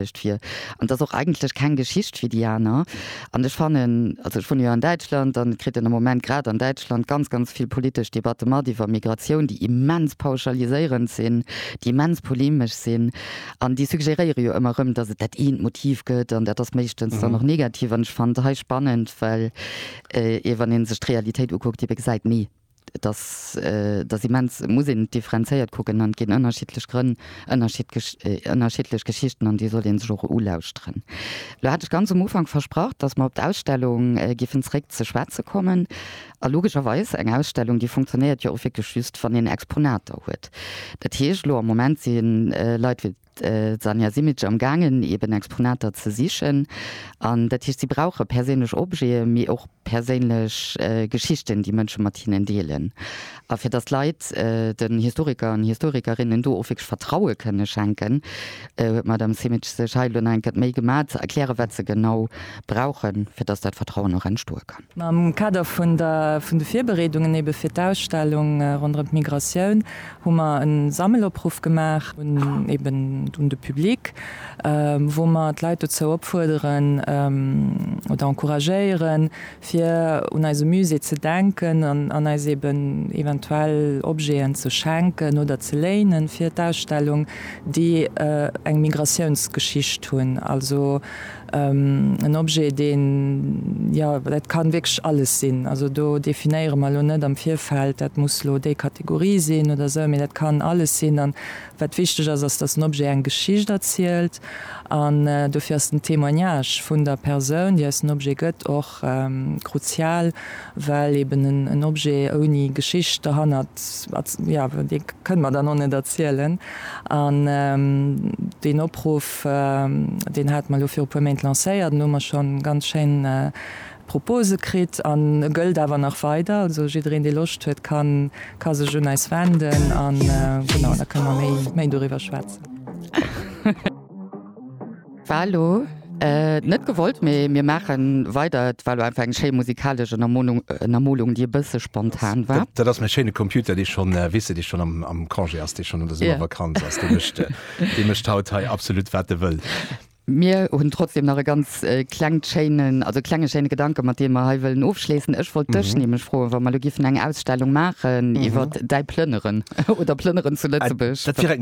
Geschicht fir. An et ass och eigentlech keng Geschicht wéi déi aner. An ech fannen, also ech wunne jo an Däitschland, an et kritt een am Moment grad an Däitschland ganz, ganz vill politesch Debatte mat iwwer Migratioun, déi immens pauschaliséierend sinn, déi immens polemesch sinn. An déi suggéréiere jo ëmmer erëm, datt et dat eent Motiv gëtt an dat ass meeschtens dann och negativ. An ech fannen et hei spannend, well ee wann ee sech d'Realitéit ukuckt, ebe gesäit, nee, Et ass, et ass immens, muss een et differenzéiert kucken an et ginn ënnerschiddlech Grënn, ënnerschiddlech, ënnerschiddlech Geschichten an déi sollt een sech och ulauschteren. Elo hat ech ganz um Ufank versprach, datt mer op d'Ausstellung giffen zréck ze schwätze kommen. A logescherweis, eng Ausstellung déi funktionéiert jo och wierklech just, wann een Exponater huet. Dat heescht, elo am Moment si Leit wéi D'Sanja Simic am gaangen eben Exponater ze sichen an dat heescht si brauche perséinlech Objete mee och perséinlech Geschichten déi Mënsche mat hinnen deelen. A fir datt d'Leit den Historiker an Historikerinnen do och wierklech Vertraue kënne schenken, huet d'Madame Simic sech hei elo nach eng Kéier d'Méi gemaach ze erkläre wat se genau brauchen, fir datt dat Vertrauen och entstoe kann. Am Kader vun de Virbereedungen ebe fir d'Ausstellung ronderëm d'Migratioun hu mer e Sammelopruff gemaach un eben un de Public, wou mer d'Leit dozou opfuerderen oder encouragéieren, fir un eise Musée ze denken an eis eben eventuell Objeten ze schenken oder ze léinen fir d'Ausstellung, déi eng Migratiounsgeschicht hunn. En Objet, deen, jo, dat kann wierklech alles sinn. Also do definéiere mer elo net am Virfeld, dat muss elo déi Kategorie sinn oder esou, mee dat kann alles sinn. An wat wichteg ass, ass, dass en Objet eng Geschicht erzielt. An dofir ass den Témoignage vun der Persoun, déi eis den Objet gëtt, och Kruzial, well eben en Objet ouni Geschicht derhannert, jo, dee kënnt mer dann och net erzielen. An deen Opruff, deen hate mer elo viru puer Méint lancéiert an do hu mer scho ganz schéin Propose kritt an e gëllt awer nach weider. Also jiddereen, dee Loscht huet, ka sech un eis wenden a genau, da kënne mer méi doriwwer schwätzen. Valo, net gewollt, mee mir maachen weider. Et war lo einfach eng schéi musikalesch Ënnermonung, Ënnermolung, déi e bësse spontan war. Dat ass mäi schéine Computer, dee schonn, weess de, dee schonn am, am Congé ass, dee schonn an der Summervakanz ass. Dee mécht, dee mécht haut hei absolut, wat e wëll. Mir hunn trotzdem nach e ganz klengt schéinen, also klenge schéine Gedanke mat deem mer hei wëllen ofschléissen. Ech wollt dech nämlech froen, wa mer lo giffen eng Ausstellung maachen iwwer däi Plënneren oder Plënneren zu Lëtzebuerg,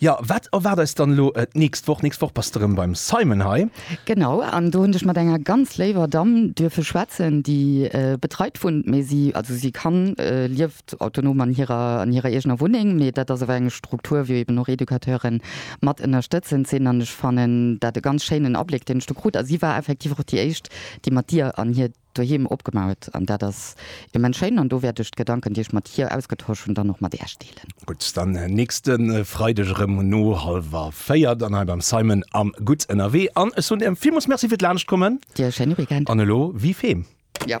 Jo, wat erwaart eis dann elo d'nächst Woch? D'nächst Woch bass de rëm beim Simon hei. Genau, an do hunn ech mat enger ganz léiwer Damm duerfe schwätzen, déi betreit wunnt, mee si, also si kann, lieft autonom an hirer, an hirer eegener Wunneng, mee dat ass awer eng Struktur, wou eben och Educateuren mat ënnerstëtzend sinn. An ech fannen dat e ganz schéinen Abléck, deen ech do krut. A si war effektiv och déi éischt, déi mat Dir an hir Doheem opgemauert an dat ass immens schéin an do wäert ech d'Gedanken, déi ech mat hir ausgetosch hunn, dann och mat Äech deelen. Gutt, dann nächste Freideg erëm um no hallwer véier dann hei beim Simon am Gutt ënnerwee an ech soen Iech villmools Merci fir d'Laanschtkommen. Dir e schéine Weekend. An elo wie wem. Jo.